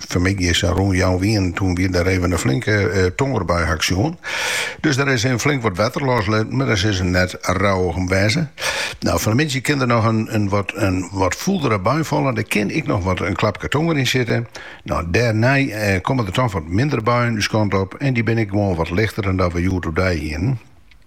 Fan 'e middei sa rûn fjouweren toen wie der even in flinke tongerbui haw ik sjoen. Dus der is even flink wat wetter loslitten, mar dêr sille se net rouwich om wêze. Nou, fan 'e middei kin der noch in, in, wat, in wat fûldere bui falle, der kin ek noch wat in klapke tonger yn sitte. Nou, dêrnei eh, komme der toch wat mindere buien ús kant op en dy binne ek gewoan wat lichter dan dat we hjoed oerdei hienen.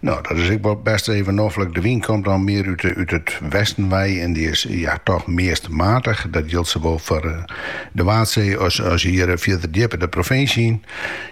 No, dat is ek wol bêst even noflik. De wyn komt dan mear út it westen wei en dy is ja toch meast matich. Dat jildt sawol foar de Waadsee as hjir fierder djipper de provinsje yn.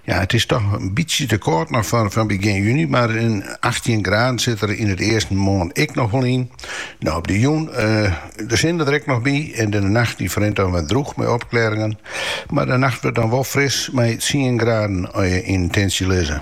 Ja, it is toch in bytsje te kâld noch foar begjin juny, mar in achttjin graden sit der yn it easten moarn ek noch wol yn. No, op de jûn de sinne der ek noch by en de nacht dy ferrint dan wer drûch mei opklêringen, mar de nacht wurdt dan wol fris mei tsien graden yn it tintsje lizze.